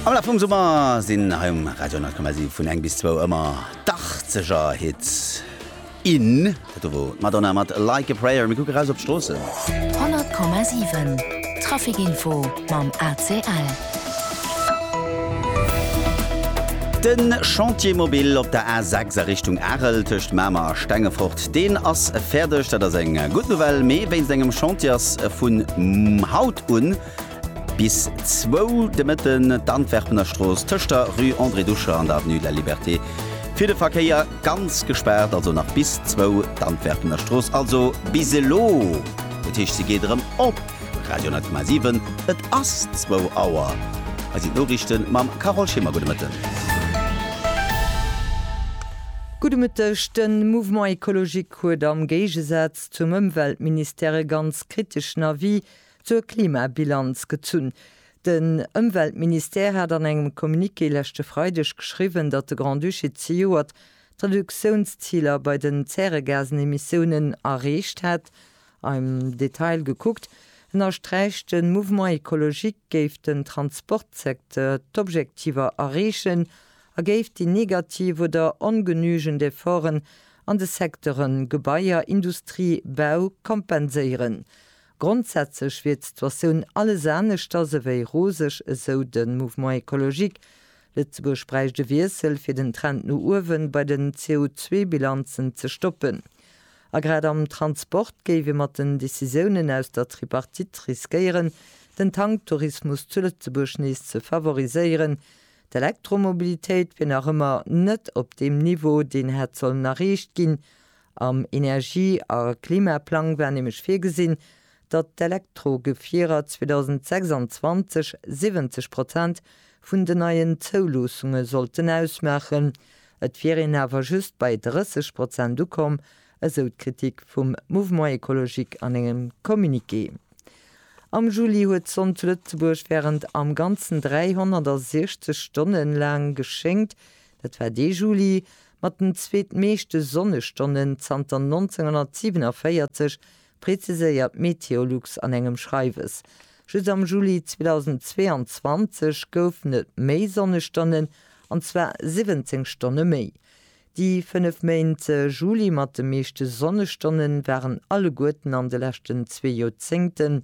Am Laf vum Summer sinn hei um Radio 10,7 vun eng bis zwou ëmmer d'Achtzeger Hits in. Dat do wor d'Madonna mat Like a Prayer. Mir kucke raus op d'Stroossen. 100,7 Trafic Info mam ACL. De Chantier mobile op der A6 a Richtung Arel tëscht Mamer a Stengefort, deen ass fäerdeg. Dat ass eng gutt Nouvelle, mee wéinst engem Chantier ass vun haut un Bis zwou de Mëtten d'Antwerpener Strooss tëscht der Rue André Ducher an der Avenue de la Liberté fir de Verkéier ganz gespaart, also nach bis zwou d'Antwerpener Strooss, also bis elo. Dat heescht, se geet erëm op. Radio 10,7, et ass zwou Auer. Hei sinn d'Noriichte mam Carole Schimmer. Gudde Mëtten. Gudde Mëtteg. De Mouvement écologique huet am Géigesaz zum Ëmweltministère e ganz kriteschen Avis Zur Klimabilanz gezunn, Den Ëmweltministère hat an engem Communiqué leschte Freideg geschriwwen, datt de Grand-Duché zejoert d'Reduktiounsziler bei den Zäregasenemissiounen erreecht hätt. Am Detail gekuckt, ënnersträicht de Mouvement écologique, géif den Transportsecteur d'Objektiver erreechen a géif déi negativ oder ongenügend Efforten an de Secteure Gebaier, Industrie, Bau kompenséieren. Grondsätzlech wier d'Situatioun alles aneschters ewéi roseg, esou de Mouvement Ecologique. Lëtzebuerg bräicht e Wiessel, fir den Trend no uewe bei den CO2-Bilanzen ze stoppen. A grad am Transport géif ee mat den Decisiounen aus der Tripartite riskéieren, den Tanktourismus zu Lëtzebuerg nees ze favoriséieren. D'Elektromobilitéit wier nach ëmmer net op deem Niveau, deen hätt sollen erreecht ginn, Am Energie a Klimaplang war nämlech virgesinn, datt d'Elektrogefierer 2026 70 Prozent vun den neien Zouloossunge sollten ausmaachen. Et wier een awer just bei 30 Prozent ukomm, esou d'Kritik vum Mouvement Ecologique an engem Communiqué. Am Juli huet d'Sonn zu Lëtzebuerg wärend am Ganzen 360 Stonne laang geschéngt. Dat war dee Juli, Mat den zweetmeeschte Sonnestonnen zanter 1947, preziséiert Meteolux an engem Schreiwes. Just am Juli 2022 goufen et méi Sonnestonnen, an zwar 17 Stonne méi. Déi fënnef Méint Juli mat de meeschte Sonnestonnen waren alleguerten an de leschten zwee Joerzéngten.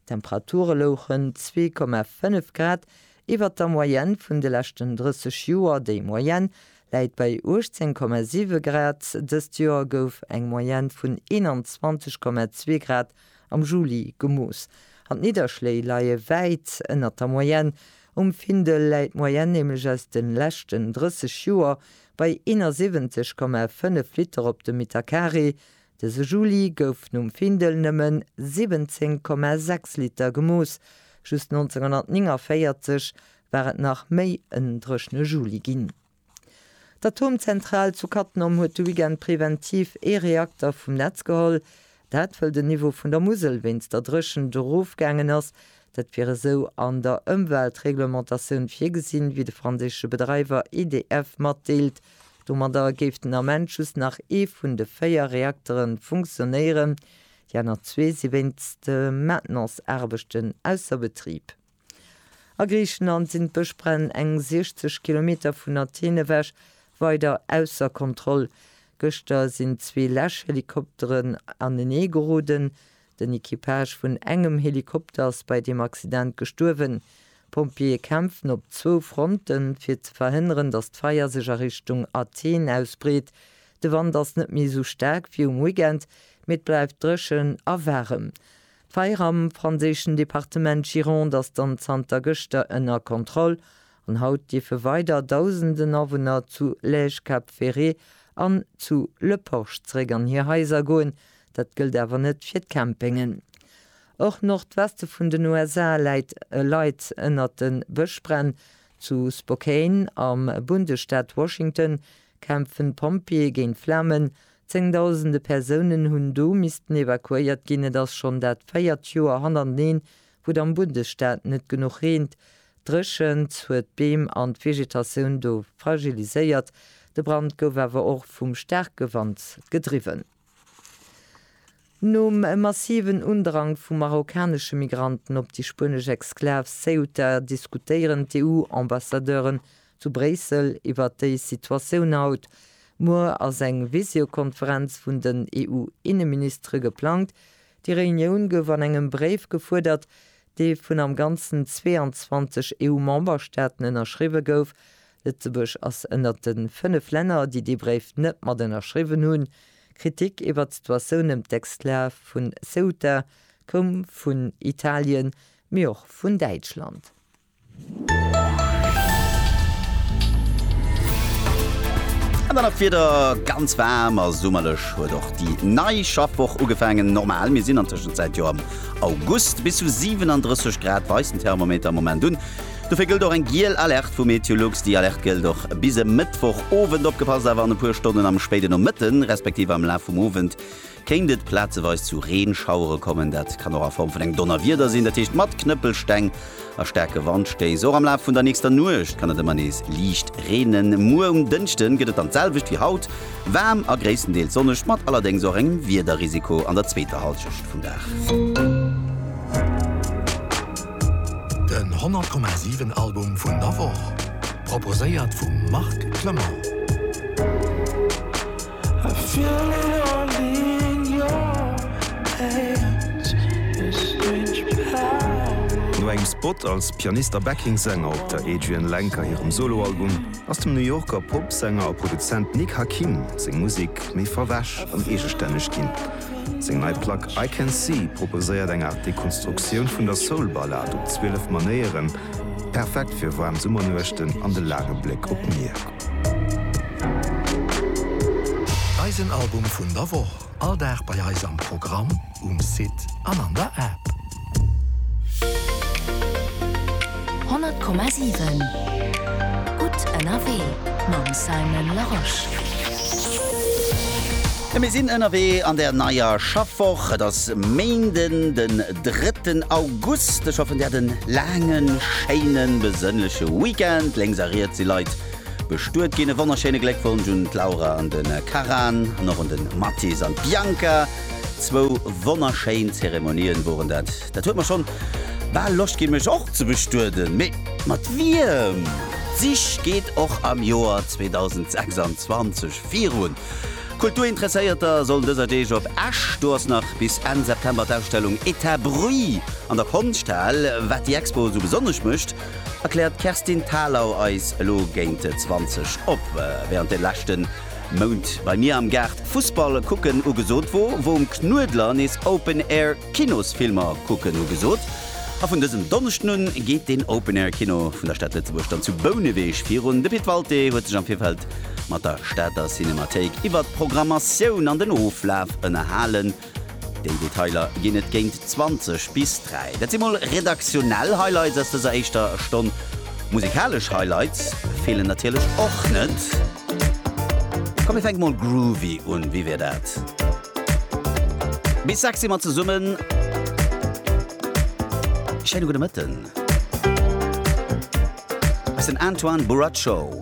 D'Temperature louchen 2,5 Grad iwwer der Moyenne vun de leschten 30 Joer, déi Moyenne läit bei 18,7 Grad. Dëst Joer gouf eng Moyenne vun 21,2 Grad am Juli gemooss an d'Nidderschléi leie wäit ënnert der Moyenne. Um Findel läit d'Moyenne nämlech aus de leschten 30 Joer bei 71,5 Liter op de Meter Carré. Dëse Juli gouf nom Findel nëmmen 17,6 Liter gemooss, just 1949 war et nach méi en dréchne Juli ginn. D'Atomzentral zu Cattenom huet de Weekend preventiv ee Reakter vum Netz geholl. Dat wëll den Niveau vun der Musel wéinst der Dréchent erofgaangen ass. Dat wier esou an der Ëmweltreglementatioun virgesinn, wéi de franséische Bedreiwer EDF matdeelt. Domadder géif den Ament just nach ee vun de véier Reaktere funktionéieren, déi aner zwee si wéinst Maintenanceaarbechten ausser Betrib. A Griichenland sinn d'Bëschbränn eng 60 Kilometer vun Athen ewech weider ausser Kontroll. Gëschter sinn zwee Läschhelikopteren aneneegeroden, Den Equipage vun engem Helikopter ass bei deem Accident gestuerwen. D'Pompjeeë kämpfen op zwou Fronten, fir ze verhënneren, datt d'Feier sech a Richtung Athen ausbreet. De Wand ass net méi esou staark wéi um Weekend, mee et bleift dréchen a waarem. D'Feier am franséischen Departement Gironde ass dann zanter gëschter ënner Kontroll an haut dierfe weider Dausenden Awunner zu Lège-Cap Ferret an zu Le Porch zeréck an hir Haiser goen, Dat gëllt awer net fir d'Campingen. Och Nordweste vun den USA läit e Leid ënnert de Bëschbränn. Zu Spokane am Bundesstaat Washington kämpfen d'Pompjeeë géint d'Flamen. Zéngdausende Persounen hunn do missten evakuéiert ginn. Et ass schonn dat véiert Joer hannerteneen, wou et am Bundesstaat net genuch reent. D'Dréchent huet d'Beem an d'Vegetatioun do fragiliséiert. De Brand gouf awer och vum staarke Wand gedriwwen. Nom massiven Undrang vu marokkanesche Migranten op déi spuenesch Exklav Ceuta diskutéieren d'EU-Ambassadeuren zu Bréissel iwwer déi Situatioun haut. Muer ass eng Visiokonferenz vun den EU-Inneministere geplangt. Déi Reunioun gouf an engem Bréif gefuerdert, dee vun am Ganzen 22 EU-Memberstaaten ënnerschriwwe gouf, Lëtzebuerg ass ënnert de fënnef Länner, déi dee Bréif net mat ënnerschriwwen hunn. Kritik iwwert d'Situatioun ëm d'Exklav vu Ceuta koum vun Italien, mee och vun Däitschland. An dann nach d'Wieder, Ganz waarm a summerlech huet och déi nei Schaffwoch ugefaangen. Normal, mir sinn an Tëschenzäit jo am August. Bis zu 37 Grad weist den Thermometer am Moment un. Dofir gëllt och eng giel Alerte vu MeteoLux. Déi Alerte gëllt och bis e Mëttwoch Owend. Opgepasst awer, an e puer Stonnen am spéiden Nomëtte respektiv am Laf vum Owend kéint et plazeweis zu Reenschauere kommen. Dat kann och a Form vun engem Donnerwieder sinn, dat heescht mat Knëppelsteng a staarke Wandstéiss. Och am Laf vun der nächster Nuecht kann et ëmmer nees liicht reenen. Muer um Dënschde gëtt et dann d'selwecht wéi haut, waarm a gréisstendeels sonneg, mat allerdéngs och engem Wiederrisiko an der zweeter Hallschecht vum Dag. Den 100,7 Album vun der Woch, proposéiert vum Marc Clement. No engem Spot als Pianist a Backing-Sänger op der Adrianne Lenker hirem Solo-Album, ass dem New Yorker Pop-Sänger a Produzent Nick Hakim seng Musek méi verwäsch an eegestänneg ginn. Seng nei Plack I Can See proposéiert eng Aart Dekonstruktioun vun der Soul-Ballad op 12 Manéieren, perfekt fir waarm Summernuechten an de laange Bléck op d'Mier. Eisen Album vun der Woch all Dag bei eis am Programm, um Site an an der App. 100,7 Gutt ënnerwee mam Simon Larosche. Mir sinn ënnerwee an der neier Schaffwoch. Et ass Méinden den drëtten August. Ech hoffen, Dir hat en laangen, schéinen, besënnleche Weekend. Lénks a riets si Leit bestuet ginn. E wonnerschéine Gléckwonsch un d'Laura an de Karan an och un de Mathis an d'Bianca. Zwou wonnerschéin Zeremonien woren dat. Dat huet mer schon bal Loscht gin mech och ze bestueden. Mee mat wiem? D'Sich geet och am Joer 2026 virun. Kulturinteresséierter sollen dëser Deeg op Esch, do ass nach bis Enn September d'Ausstellung Etat Bruit an der Konschthal. Wat déi Expo esou besonnesch mécht, erkläert d'Kerstin Thalau eis elo géint 20 op. Während de leschten. Mount bei mir am Gaart Fussball kucken ugesot wor, wor um Knuedler nees Open Air Kinosfilmer kucken ugesot, a vun dësem Donneschden un geet deen Open Air Kino vun der Stad Lëtzebuerg dann zu Bouneweg virun. De Pit Walté huet sech am Virfeld mat der Stater Cinemathéik iwwert d'Programmatioun an den Oflaf ënnerhalen. Déi Detailer ginn et géint 20 bis 3. Dat si mol redaktionell Highlights aus dëser éischter Stonn. Musikalesch Highlights feelen natierlech och net. Komm mir fänke mol groovy un, wéi wier dat? Bis 6 si mer zesummen. Schéine gudde Mëtten. Hei ass den Antoine Buraccio.